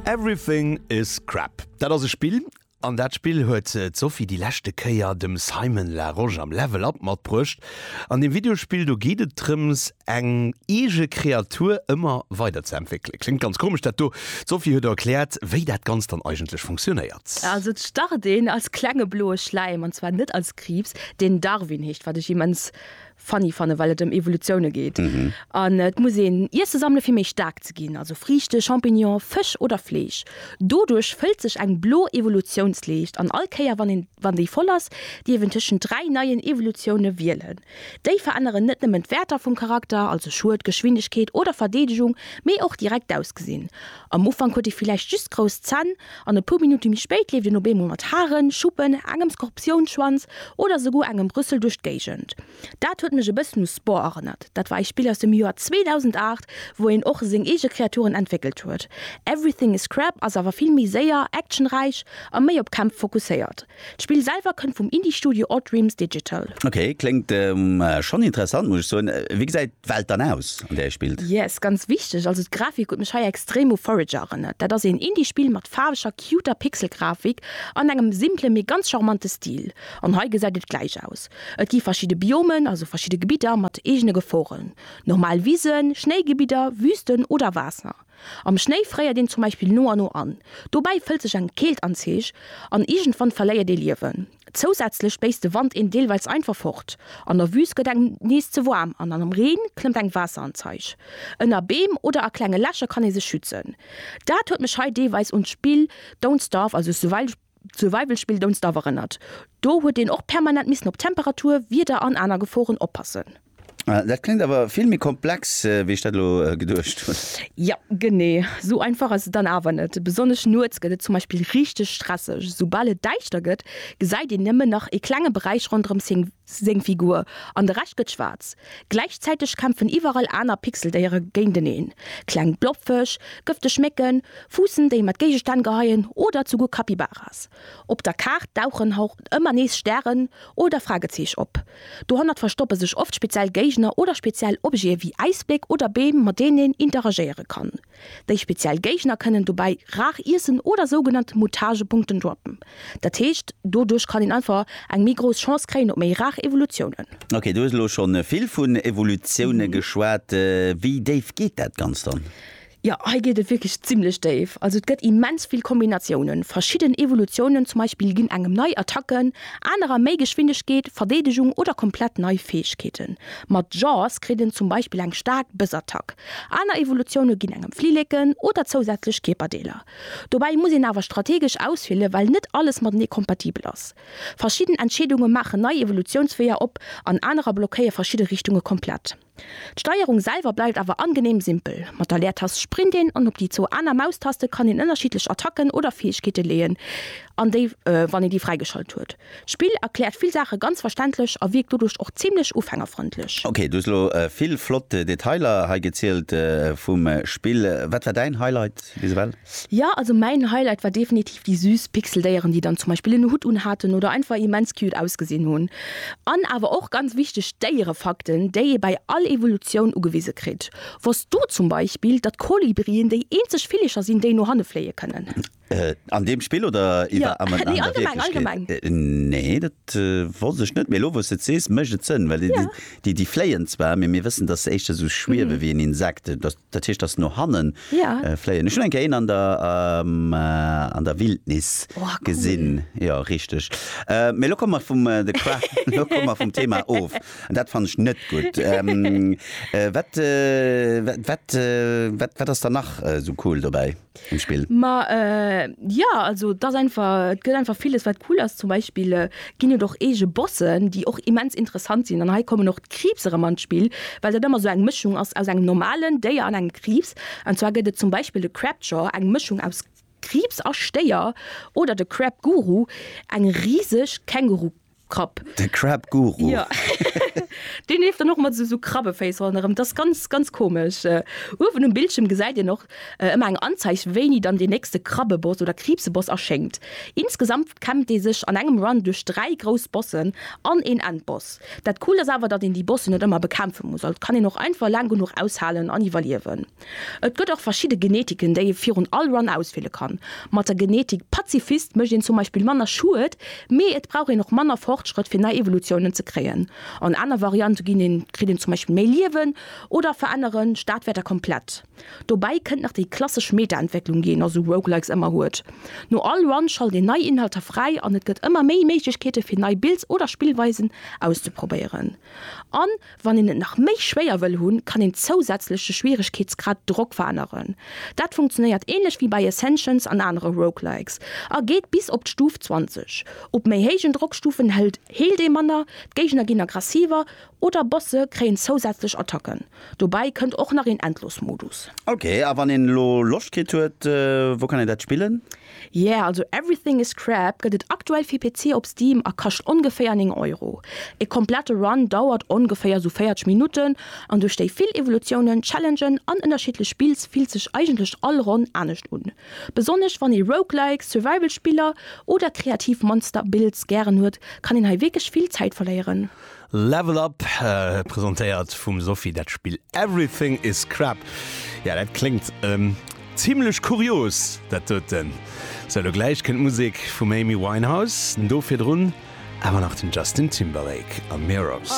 Everything is crap, dat ass e Spill. An dat Spill huet d'Sophie déi leschte Kéier dem Simon Larosche am Level Up matbruecht. An deem Videospill do geet et drëms, eng eege Kreatur ëmmer weider ze entwéckelen. Kléngt ganz komesch dat do. D'Sophie huet erkläert, wéi dat Ganzt dann eigentlech funktionéiert. Also et start een als klenge bloe Schläim, an zwar net als Kriibs, deen Darwin heescht, wat ech immens funny fannen, well et ëm Evolutioune geet. An et muss een Iesse sammele fir méi staark ze ginn, also Friichte, Champignonen, Fësch oder Fleesch. Doduerch fëllt sech eng blo Evolutiounsleescht an all Kéier wann een wann déi voll ass, dierf een tëschent dräi neien Evolutioune wielen. Déi veränneren net nëmmen d'Wäerter vum Charakter, also Schued, Geschwindegkeet oder Verdeedegung, mee och direkt d'Ausgesinn. Am Ufank huet e villäicht just grouss Zänn an e puer Minutte méi spéit leeft en op eemol mat Haren, Schuppen, engem Skorpiounschwanz oder esouguer engem Rüssel duerch d'Géigend. Dat huet mech e bëssen u Spore erënnert. Dat war ee Spill aus dem Joer 2008, wou een och seng eege Kreaturen entwéckelt huet. Everything is Scrap ass awer vill méi séier, actionräich a méi op Kämpf fokusséiert. D'Spill selwer kënnt vum Indie-Studio Odd Dreams Digital. Ok, kléngt schonn interessant muss ech soen. Wéi gesäit d'Welt dann aus an där ee spillt? Yes, ganz wichteg, also d'Grafik huet mech hei extrem u Forager erënnert. Dat ass een Indie-Spill mat faarweger, cuter Pixel-Grafik an engem simplen, mee ganz charmante Stil. An hei gesäit et gläich aus. Et gi verschidde Biomen, also verschidde Gebidder mat eegene Geforen. Normal Wisen, Schnéigebidder, Wüsten oder Waasser. Am Schnéi fréiert een zum Beispill no a no an. Dobäi fëllt sech eng Keelt an d'Zeech an iergendwann verléiert ee Liewen. Zousätzlech béisst de Wand een deelweils einfach fort. An der Wüüst gëtt engem nees ze waarm an am Reen klëmmt eng Waasser an d'Zeech. Ënner Beem oder a klenge Lächer kann ee sech schützen. Dat huet mech hei deelweis un d'Spill Don't Starve, also Survival, D'Survival Spill Don't Starve erënnert, do huet een och permanent missen op Temperatur, Wieder an aner Geforen oppassen. Dat kléngt awer vill méi komplex wéi ech dat elo geduecht hunn. Jo, genee sou einfach ass et dann awer net. Besonnesch nuets gëtt et zum Beispill richteg stresseg. Soubal et däischter gëtt, gesäit een nëmmen nach ee klenge Beräich ronderëm seng. seng Figur an de Rescht gëtt schwaarz. Gläichzäiteg kämpfen iwwerall aner Pixeldéiere géinteneen, kleng Blobfësch, gëfteg Mécken, Fuussen, déi mat Géigestänn geheien oder zuguer Capybaras. Op der Kaart dauchen och ëmmer nees Stären oder Fragezeech op. Dohannert verstoppe sech oft speziell Géigner oder speziell Objete wéi Äisbléck oder Beem, mat deenen een interagéiere kann. Déi speziell Géigner kënnen dobäi rar iessen oder sougenannt Mutagepunkten droppen. Dat heescht, doduerch kann een einfach eng méi grouss Chance kréien op méi rar Evolutiounen. Ok, du hues elo scho vill vun Evolutioune geschwat. Wéi déif geet dat Ganzt dann? Jo, hei geet et wierklech zimmlech déif. Also et gëtt immens vill Kombinatiounen. Verschidden Evolutiounen zum Beispill ginn engem nei Attacken, anerer méi Geschwindegkeet, Verdeedegung oder komplett nei Fäegkeeten. Mat Jaws kritt en zum Beispill eng staark Bëssattack. Aner Evolutioune ginn engem Flilleken oder zousätzlech Kierperdeeler. Dobäi muss een awer strategesch auswielen, well net alles matenee kompatibel ass. Verschidden Entscheedunge maachen nei Evolutiounsweeër op an anerer blockéie verschidde Richtunge komplett. D'Steierung selwer bleift awer angeneem simpel, Mat der Leertast sprint een an op déi zwou aner Maustaste kann een ënnerschiddlech Attacken oder Fäegkeete leeën an déi, wann een déi fräigeschalt huet, D'Spill erkläert vill Saache ganz verständlech a wierkt doduerch och zimmlech ufängerfrëndlech. Ok, du hues elo vill flott Detailer hei gezielt vum Spill. Wat war däin Highlight bis ewell? Jo, also mäin Highlight war definitiv déi süß Pixeldéieren, déi dann zum Beispill en Hutt unhaten oder einfach immens cute ausgesinn hunn. An awer och, ganz wichteg, d'Déierefakten, déi ee bei all Evolutioun ugewise kritt. Wosst du zum Beispill, datt Kolibrien déi eenzeg Villecher sinn, déi no hanne fléie kënnen? An deem Spill oder iwwer an der Wierklechkeet? Nee, dat wosst ech net, mee elo wou s de et sees, mécht et Sënn, well déi déi fléien zwar, mee mir wëssen, datt se éischter esou schwiewe wéi en Insekt, dat heescht, datt se no hanne fléien. Ech hunn eng Kéier een an der Wildnis gesinn, jo richteg. Mee elo komme mer vum de elo komme mer vum Thema of an dat fannen ech net gutt. Wat wat wat ass dann nach esou cool dobäi? um Spill. Ma jo, also et ass einfach, et gëtt einfach villes wat cool ass. Zum Beispill ginn et och eege Bossen, déi och immens interessant sinn. An hei kommen och d'Kriibs erëm an d'Spill, well dat ëmmer esou eng Mëschung ass aus engem normalen Déier an engem Kriibs. An zwar gëtt et zum Beispill de Crabjaw, eng Mëschung aus Kriibs a Stéier, oder de Crabguru, eng riseg Känguru-Krabbe. Krapp. De Crab Guru. Ja. Deen leeft dann och mat esou Krabbeféiss ronderëm. Dat ass ganz, ganz komesch. Uewen um Bildschierm gesäit een och ëmmer eng Anzeig, wéini dann deen nächste Krabbeboss oder Kriibseboss erschéngt. Insgesamt kämmt ee sech an engem Run duerch dräi grouss Bossen an een Endboss. Dat Coolt ass awer, datt een déi Bossen net ëmmer bekämpfe muss. Also et kann een och einfach laang genuch aushalen an iwwerliewen. Et gëtt och verschidde Genetiken, déi ee virun all Run auswiele kann. Mat der Genetik Pazifist mécht een zum Beispill manner Schued, mee et brauch een och manner Fortschrëtt fir nei Evolutiounen ze kréien. An aner Variante ginn een, kritt een zum Beispill méi Liewen oder verännere Stadwäerter komplett. Dobäi kënnt nach déi klassesch Meta-Entwécklung, déi een a sou Roguelikes ëmmer huet. No all Run schalt een nei Inhalter fräi an et gëtt ëmmer méi Méiglechkeete fir nei Builds oder Spillweisen auszeprobéieren. An. Wann een et nach méi schwéier wëll hunn, kann een zousätzlech de Schwieregkeetsgrad Drock veränneren. Dat funktionéiert ähnlech wéi bei Ascensions an anere Roguelikes a geet bis op d'Stuf 20. Op méi héijen Drockstufen hëlt heelt ee manner, d'Géigner ginn aggressiver oder Bosse kréien zousätzlech Attacken. Dobäi kënnt och nach een Endlosmodus. Ok, a wann een elo Loscht kritt huet, wou kann een dat spillen? Yeah, also Everything is Crap gëtt et aktuell fir PC op Steam a kascht ongeféier 9 Euro. E komplette Run dauert ongeféier sou 40 Minutten an duerch déi vill Evolutiounen, Challengen an ënnerschiddlech Spills fillt sech eigentlech all Ronn anescht un. Besonnesch wann ee Roguelikes, Survival Spiller oder kreativ Monster Builds gären huet, kann een hei wierklech vill Zäit verléieren. Level Up, presentéiert vum Sophie, dat Spill Everything is Crap. Jo, dat kléngt zimlech kurios, dat doten. Sou, elo gläich kënnt d'Musek vum Amy Winehouse, do virdrun awer nach den Justin Timberlake a Mirrors.